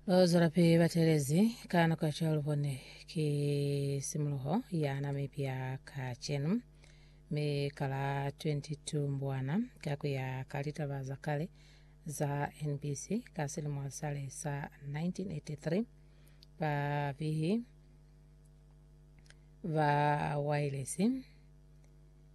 Lozwelapi batelezi ka nako ya chalubone ki simuluho ya Namibia kacenu mi kala 22 Mbwana ka kuya ka litaba za kale za NBC ka silimo sale sa 1983 babihi ba wailesi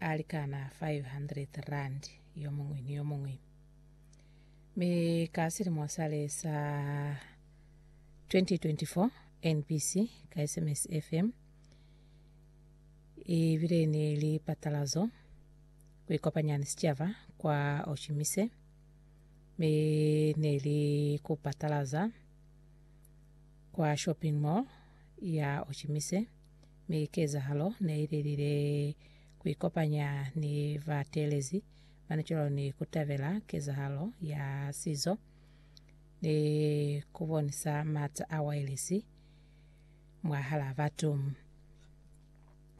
a likana 500 rand yo muñwi ni yo muñwi. Mi ka silimo sale sa 2024 NBC ka SMS FM i bile ni lipatalazo ku ikopanya ni sicaba kwa Oshimise mi ne li ku patalaza kwa shopping mall ya Oshimise. mi kezahalo ne ililile kuikopanya ni bateelezi ba natural ni kutabela kezahalo ya sizo ni kubonisa maata a wailesi mwahala batu.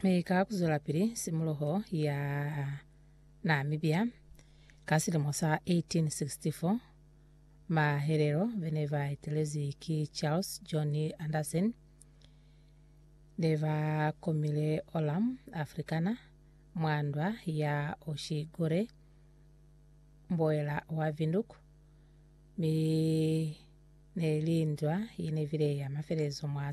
Mi ka kuzwelapili simuloho ya Namibia ka silimo sa 1864, mahelelo bene baetelezi ki Charles John Anderson, ne ba komile Olam, Afrikana, mwa ndwa ya Oshi Gore, mboela wa Vinduk, mi ne li ndwa ye ne bile ya mafelelezo mwa